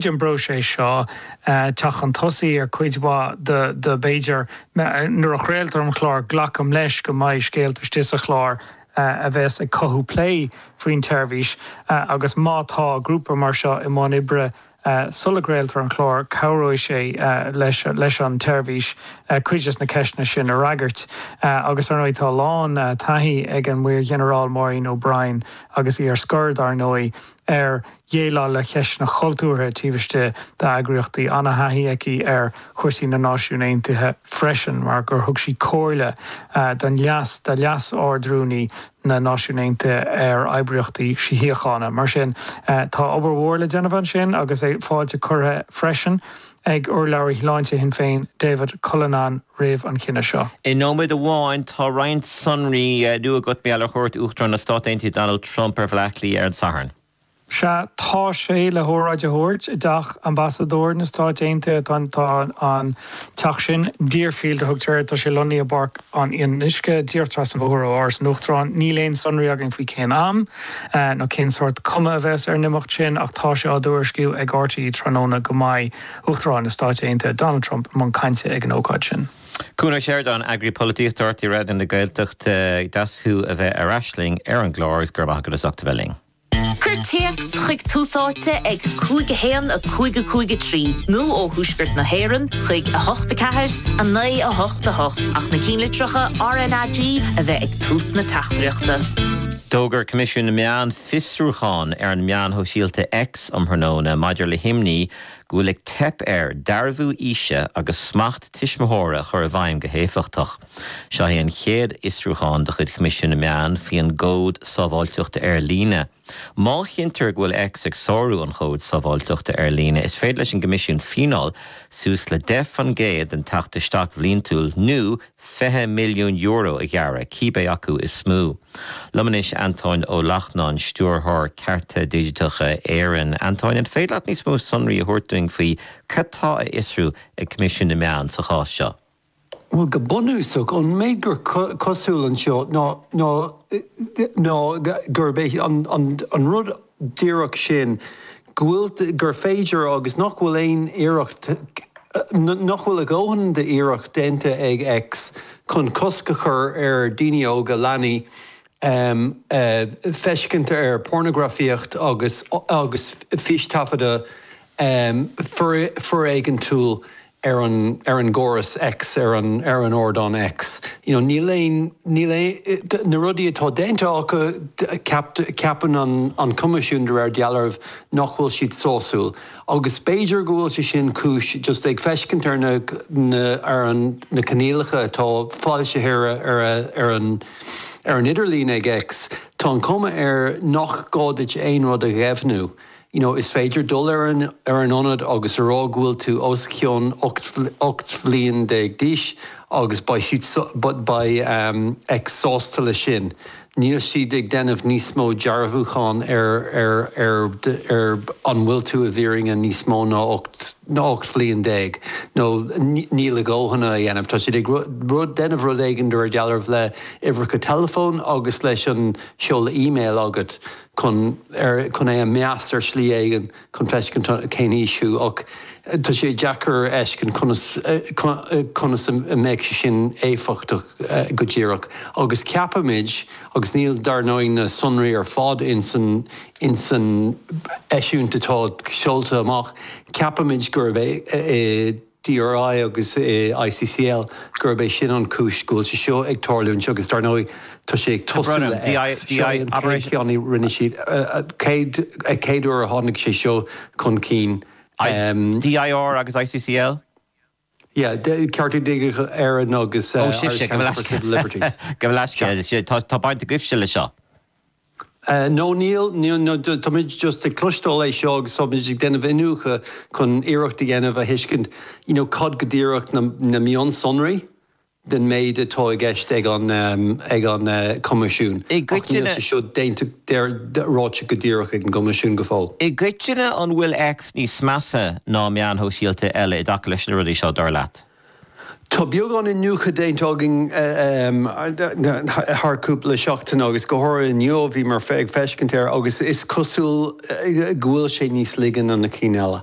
tríd an bpróiseas seo teacht chun tosaigh ar chuid mhaith de b'fhéidir nuair a chraoltar an chlár glacaim leis go mbeidh scéalta istigh sa chlár a bheas ag cothú plé faoin tseirbhís agus má tá grúpa mar seo i mbun oibre sula gcraoltar an chlár cabhróidh sé leis an tseirbhís cuid des na ceisteanna sin a fhreagairt agus ar ndóigh tá a lán taithí ag an Maorghinearál Maureen O'Brien agus í ar scor dar ndóigh. ar dhéileáil le ceisteanna cultúrtha taobh istigh d'eagraíochtaí, an-thaithí aici ar chúrsaí na Náisiún Aontaithe freisin mar gur thug sí comhairle don leas do Leas-Ardrúnaí na Náisiún Aontaithe ar oibríochtaí síochána. Mar sin, tá obair mhór le déanamh ansin agus fáilte curtha freisin. ag urlabhraí shláinte Shinn Féin David Cullinane roimh an chinneadh seo. I nóiméad amháin, tá roinnt sonraí nua agat maidir le cuairt Uachtarán na Stát Aontaithe Donald Trump ar Bhleá Cliath ar an Satharn. Sea, tá sé le hóráid a thabhairt i dTeach Ambasadóir na Stáit Aontaithe. Tá an teach sin, Deerfield a thugtar air, tá sé lonnaithe i bPáirc an Fhionnuisce, díreach trasna an bhóthair ó Áras an Uachtaráin. Níl aon sonraí againn faoi cén am. nó cén sórt cuma a bheas ar an imeacht sin ach tá sé á thuairisciú ag RTÉ tráthnóna go mbeidh Uachtarán na Stáit Aontaithe Donald Trump i mbun cainte ag an ócáid sin. Cuan Ó Seireadáin, Eagraí Polaitíochta RTÉ Raidió na Gaeltachta, deas thú a bheith ar ais linn ar an gclár agus go raibh maith agat as ucht a bheith linn. Cuir téacs chuig Tús Áite ag 5 1 5 5 3 nó ó Thuaisceart na hÉireann chuig 8 4 9 8 8 ach na cinnlitreacha RNAG a bheith ag tús na teachtaireachta. D'fhógair Coimisiún na Meán fiosrúchán ar an meán shóisialta X um thráthnóna maidir le himní go bhfuil ag teip air dearbhú aoise agus smacht tuismitheora a chur i bhfeidhm go héifeachtach. Seo é an chéad fhiosrúchán de chuid Choimisiún na Meán faoin gCód Sábháilteachta Ar Líne. Má chinntear go bhfuil X ag sárú an Chóid Sábháilteachta Ar Líne, is féidir leis an gCoimisiún fíneáil suas le 10% den teacht isteach bhliantúil nó, €20 milliún a ghearradh, cibé acu is mó. Liom anois Antóin Ó Lachtnáin, Stiúrthóir Cearta Digiteacha Éireann. Antóin, an féidir leat níos mó sonraí a thabhairt dúinn faoi cad tá a fhiosrú ag Coimisiún na Meán sa chás seo? Bhuel, go bunúsach, an méid gur cosúil anseo ná gurb é an rud díreach sin, go bhfuil, gur féidir agus nach bhfuil aon iarracht, nach bhfuil a dhóthain d'iarracht déanta ag X chun cosc a chur ar daoine óga, leanaí, feiscint ar pornagrafaíocht agus fístaifeadadh foréigeantúil ar an ar an gcóras X ar an ar an ardán X you know níl aon níl aon na rudaí atá déanta acu ceap ceapann an an Coimisiún de réir dealraimh nach bhfuil siad sásúil agus b'fhéidir go bhfuil sé sin cúis just ag feiscint ar na na ar an na coinníollacha atá foilsithe ar ar a ar an ar an idirlíon ag X tá an cuma air nach gá duit aon rud a dheimhniú you you know is féidir dul ar an ar an ionad agus a rá go bhfuil tú os cionn ocht ocht bhliain déag d'aois agus beidh siad beidh um X sásta le sin níl siad ag déanamh níos mó dearbhúcháin ar ar ar ar an bhfuil tú i bhfírinne níos mó ná ocht ná ocht bhliain déag nó níl a ndóthain á dhéanamh tá siad ag rud rud déanamh rud éigin de réir dealraimh le uimhreacha teileafóin agus leis an seoladh email agat chun ar chun é a mheas ar shlí éigin chun feiscint cén aois thú ach tá sé deacair a fheiscint conas conas a mbeadh sé sin éifeachtach go díreach agus ceapaimid agus níl dar ndóigh na sonraí ar fad insan insan eisiúint atá seolta amach ceapaimid gurb é i DRI agus i ICCL gurb é sin an cúis go bhfuil sé seo ag tarlúint agus dar ndóigh tá sé ag tosú le X. Seo é an chéad cheann a rinne siad, chéad chéad uair a tháinig sé seo chun cinn. DRI agus ICCL? Yeah, Cearta Digiteacha Éireann agus Irish Council for Civil Liberties. Agus tá baint agaibhse le seo? No, níl, no, táimid just ag cloisteáil é seo agus táimid ag déanamh iniúchadh chun iarracht a dhéanamh a thuiscint you know cad go díreach na mionsonraí den méid atá i gceist ag an ag an Coimisiún ach níl sé seo déanta ráite go díreach ag an gCoimisiún go fóill. I gcoitinne an bhfuil X níos measa ná meáin shóisialta eile i dtaca leis na rudaí seo dar leat? Tá beagán iniúchadh déanta againn thar cúpla seachtaine agus go háirithe inniu bhí mé ag feiscint air agus is cosúil go bhfuil sé níos laige ná na cinn eile.